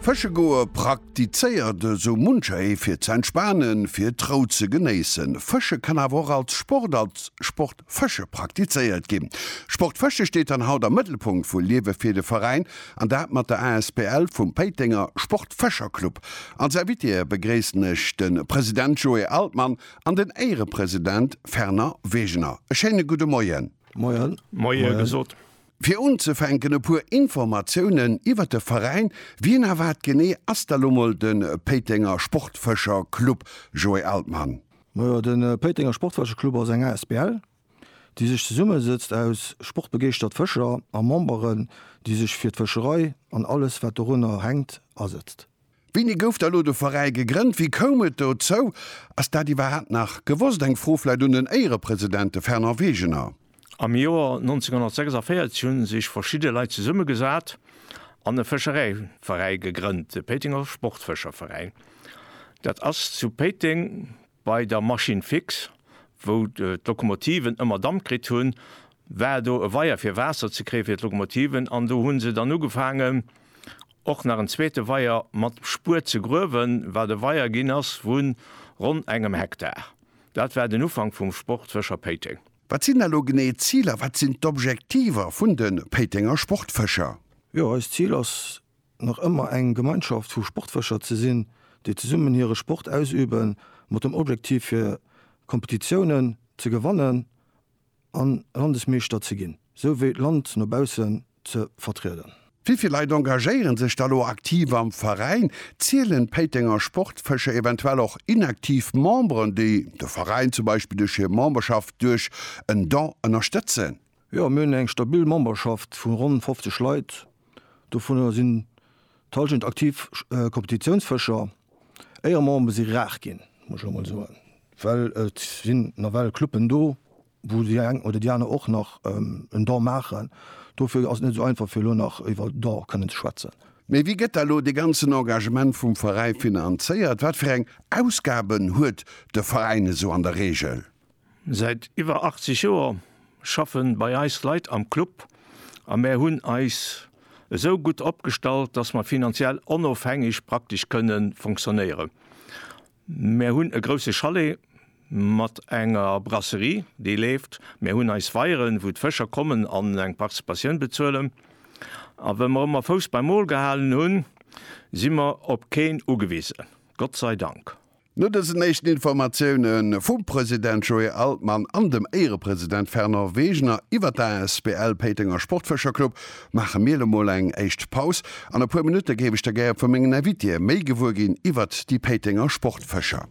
Fësche goe praktizéiert esou muncher ee fir ze entspanen, fir d'Rou ze genéissen. Fësche kann awer och als Sport, als Sport Fësche praktizéiert ginn. Sport Fësche steet dann haut am Mëttelpunkt vu Liewe fir de Veräin an dat mat der asbl vum Péitenger Sport Fëscher Club. Als Invitée begréissen ech de President Joé Altmann an den Éierepresident Fernand Wegener. E schéine gudde Moien. Moien. Moie gesot. Fir unzefänken e puer Informatiounen iwwert de Veräin, Wien a wat genee ass da lo mol de Péitenger Sportfëscher Club, Joé Altmann? Majo, de Péitenger Sportfëscher Club ass eng asbl, déi sech zesummesëtzt aus sportbegeeschtert Fëscher a Memberen, déi sech fir d'Fëscherei an alles wat dorunner hänkt asëtzt. Wéini gouf da lo de Veräi gegrënnt? Wéi koum et dozou? Ass dat iwwerhaapt nach gewosst? Eng Fro vläit un den Éierepresident, de Fernand Wegener. Am Joer 1946 hu sech verschidde Leit zesummegesat an e Fëschereiveräi gegrënnt, de Péitenger Sportfëscherveräin. Dat ass zu Péiteng Bei der Machine fix, wou d'Lokomotiven ëmmer Damp kritt hunn, war do e Weier fir Waasser ze kréie fir d'Lokomotiven an do hu se dann ugefaangen och nach en zweete Weier mat Spuer ze gruewen, wat e Weier ginn ass vun ronn engem Hektar. Dat war den Ufank vum Sport Fëscher Péiteng. Wat sinn elo genee d'Ziler, wat sinn d'Objektiver vun de Péitenger Sportfëscher? Jo, eist Zil ass nach ëmmer eng Gemeinschaft vu Sportfëscher ze sinn, déi zesummen hire Sport ausübe mat dem Objektiv fir Kompetitiounen ze gewannen a Landesmeeschter ze ginn, sou wéi d'Land no baussen ze vertrieden. Wéi vill Leit engagéiere sech da lo aktiv am Veräin? Zielen d'Péitenger Sportfëscher eventuell och inaktiv Memberen, déi de Veräin zum Beispill duerch hir Memberschaft duerch en Don ënnerstëtzen? Jo, mir hunn eng stabil Memberschaft vu ronn 50 Leit. Dovunner sinn d'Halschent aktiv Kompetitiounsfëscher. Éieremember si rar ginn, muss ech elo mol soen, well et sinn nawell Cluben do, wou déi eng oder déi aner och nach en Don maachen. Dofir ass et net esou einfach, fir elo nach iwwer e Don kënnen ze schwätzen. Mee wéi gëtt da elo dee ganzen Engagement vum Veräi finanzéiert? Wat fir eng Ausgaben huet de Veräin esou an der Reegel? Säit iwwer 80 Joer schaffen bei eis Leit am Club a mär hunn eis esou gutt opgestallt, dass mer finanziell onofhängeg praktesch kënne fonctionnéieren. Mär hunn e grousse Chalet mat enger Brasserie, déi leeft, mär hunn eis Weieren, wou d'Fëscher kommen an eng Participatioun bezuelen. A well mer ëmmer Fouss beim Mol gehalen hunn, si mer op keen ugewisen, Gott sei Dank. No dësen éischten Informatioune vum President Joé Altmann an dem Éierepresident Fernand Wegener iwwer d'asbl Péitenger Sportfëscherclub maache mir elo mol eng éischt Paus. An e puer Minutte géif ech da gär vu mengen Invitéë méi gewuer ginn iwwert déi Péitenger Sportfëscher.